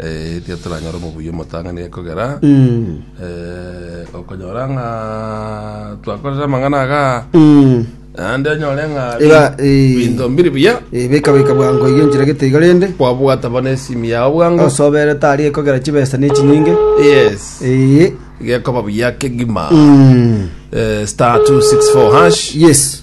Eh, erio toranyore omobuya omotang'ani ekogera eh, okonyora ng'a twakorera amang'ana aga naende onyore ng'a Iga, eh. binto mbiri buya Eh, beka beka bwango iga enchera gete iga rende kwabwata bono esimu yao bwango osobere tari ekogera chibesa ne chinyinge yes Eh, gekoba buya kegima mm, eh, star 264 hash yes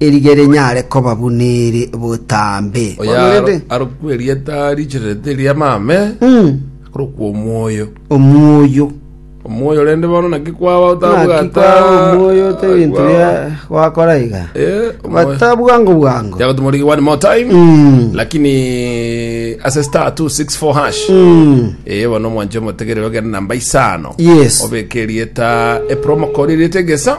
erige rinyare koba buna eri botambe. Oyore arokwe erieta richererete eria Mame, akorokwa Omwoyo. Omwoyo. Omwoyo rende bono naki kwaba Naki kwao otabwata omwoyo ote ebinto kwao. bia gwakora iga Eh, omwoyo. bata bwango bwango Yagotumorigi one more time. Mm. Lakini ase star 264 hash. Mm. Eh, bono omwancho omotegerere ogende namba isano. Yes. Obeke erieta epromo code erieta egesa.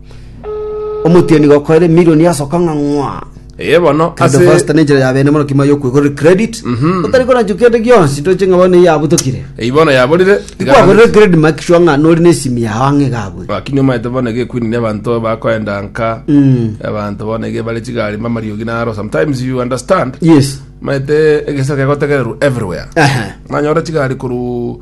Omotienyi gokoire emilion yasoka ng'a ng'wa. Eye bono Kendo ase Foster nenchera ya bene mono kima yokwegorera credit. Mhm. Otari koranchwa kende gionsi toche ng'a bono eyio abutokire. eyi bono yaborire Tikwagorire credit make sure ng'a nori n'esimu yao ang'e iga abwo. lakini omanyete bono ege ekwini ne abanto bakoenda nka Mm. abanto bono ege bare chigari mamariogi naro sometimes you understand Yes. omanyete egesaku kegotegererwa everywhere Ehe. mwanyora chigari koru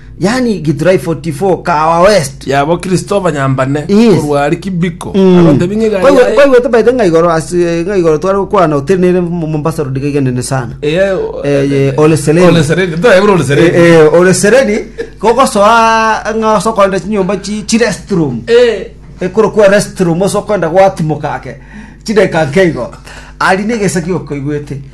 yaani Githurai 44 Kahawa West. Yabo Christopher Nyambane Yes. korwa aria Kibiko Mm. agotebi ng'a egari Kwaigu- yaye kwaigwete baete ng'a igoro ase ng'a igoro tware gokwana hoteli nere Mo- Mombasa road gaiga nene sana eye Eh, ye, Ole Sereni. Ole Sereni toyebura Ole Sereni Eh, eh, ore sereni kogosoa ng'a osokoenda chinyomba chi chi restroom eh ekorokwa restroom osokoenda gwatimoka ake chideka nkeigo ari negesaki okoigwete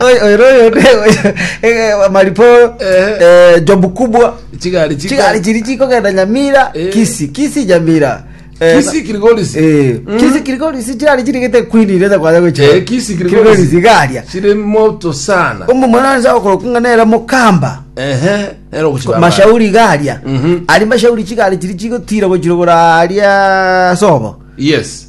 Oy- oyo noyo ne- oyo- eh, mariporo Ehe. eh, jobu kubwa Chigari chika. chigari chiri chikogenda nyamira Eh. kisi kisi nyamira Eh, Kisi kirigorisi. eh, Mm. kisi kirigorisi chigari chirigete kwini rete kwaja gocha Eh, kisi kirigorisi. garia Chiri moto sana. omomwananisa okorokung'a nere mokamba Ehe. Ero kuchibaba. mashauri garia Mhm. ari mashauri chigari chiri chigotira gochirogora aria sobo Yes.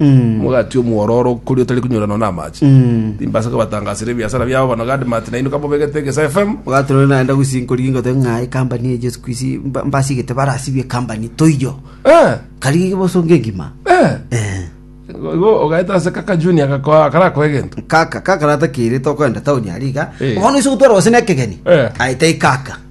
omogati omwororo okoria otari konyoranwa namache timbasa kobatangasera ebiasara biabo bono gadi mati nainwe kamobegete egesa fm Obwate rore naenda gusinkoria ingote ng'a ekambani eye Jesu Kristo mba- mbasigete barasibie ekambani toiyo Eh, kari bosonge engima eh. Eh. Igo ogaeta ase kaka junior gakoa akarakoa egento kaka kaka ratakeire tokoenda taoni aria iga Eh. bono ase ogotwara gose na ekegeni Eh. aye tai kaka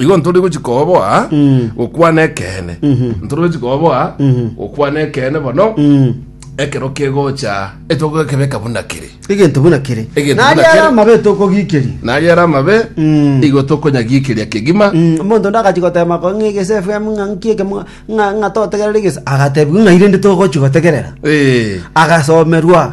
igo ntore gochi koboa gokwana ekeene ntore gochi koboa gokwana ekeene bono ekero kegocha etogo ekebeka buna kere egento buna kere Egento buna nari ara kere. amabe tokogikeri nari ara amabe Mm. igo tokonyagikeria kegima Mm, omonto ndagachi gotema ko ng'a egese fm ng'a nki ekemo ng'a ng'a totegerere egese agatebiwa ng'a irende togochi gotegerera Eh, agasomerwa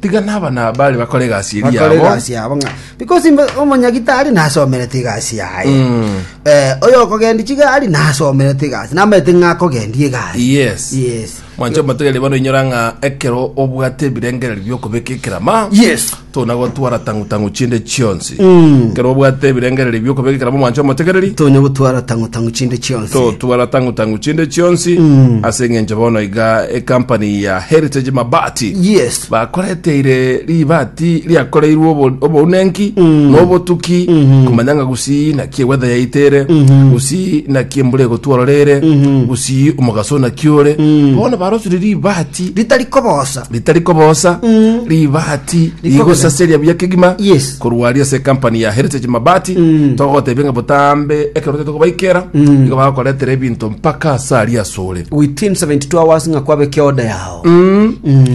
Tiga naba nabare bakore egasi eria bakore yabo. egasi yabo ng'a because mbe- omonyagitari nasomerete egasi yaye Mm. Eh, oyo okogendi chigari nasomerete egasi namaete ng'a akogendia egari Yes. yes Mwancho motogere bono inyora ng'a ekero obwate ebirengererio biokobeka ekerama. yes Tona gotwara tangu tangu chinde chionsi. omobati Mm. ekero obwate ebirengererio bi'okobeka ekeramo mwancha omotegereri tonya gotwara tango tango chinde chionsi totwara tangu tangu chinde chionsi Mm. ase eng'encho bono iga ekampani ya heritage mabati yes bakoreteire ribati riakoreirwe obo- obounenki Mm. nobotuki Mhm. kumanya ng'a gusii naki ewetha yaitere Mhm. gusii naki embura egotwororere Mhm. gusii omogaso naki ore Mm. bono barosire ribati ritari kobosa ritari kobosa ribati rigosaseria buya kegima Yes. korwa aria ase company ya heritage mabati togotebia ng'a botambe ekero tote kobaikera igo bagokoretera ebinto mpaka ase aria asore within 72 hours ng'a kwabeke order yao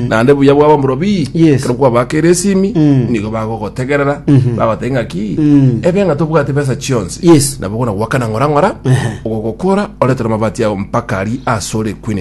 naende buya bwabo morobi Yes. ekero kwabakera esimi nigo bagogotegerera bagotebia ng'a ki ebe ng'a tobwate besa chionsi Yes. nabo gona gwakana ng'ora ng'ora ogogokora oretera amabati yao mpaka ari asore queen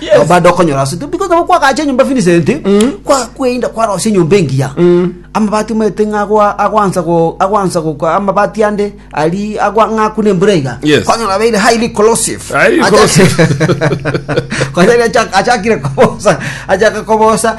Yes. baada okonyora ase because nabo kwagacha enyomba Vincent kwa kweinda kwarosia enyomba engiya amabati omete ng'a agwa- agwansa go agwansa go kwa- amabati ande ari agwa ng'akuna embura iga Yes. kwanyora abeire highly corrosive Highly Acha- corrosive. Kwanyora acha- achakire kobosa achaka kobosa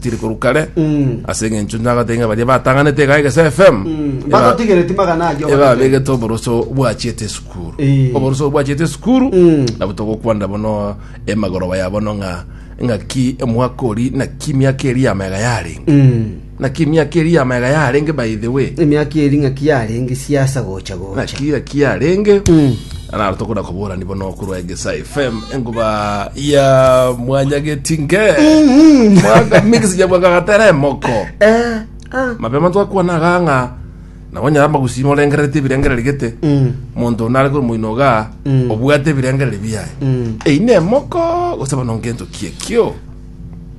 tiri korwa kare Mm. ase eng'encho nyagate ng'a baria batang'anete iga egese fm Mm. eba- Batotigereti magana ayio eba bagate. begete oboroso bwachiete esukuru Eh. oboroso bwachiete esukuru Mm. nabo togokwanera bono emagoroba ya bono ng'a ng'aki omwaka ori naki miaka eri yamega yarenge Mm. naki miaka eri yamega yarenge by the way Emiaki eri ng'aki yarenge siasa gocha gocha. naki naki yarenge Mm. Naro tokona koborani bono korwa Egesa FM enguba ya mwanyageti nge mwaka mix ya mwaka gatera emoko Eh, ah. mapema twakwana gang'a nabo nyara magusimo orengerete ebirengereri gete monto nare kore moino ga obwate ebirengereri biaye eyine emoko gose bono ngento kiekio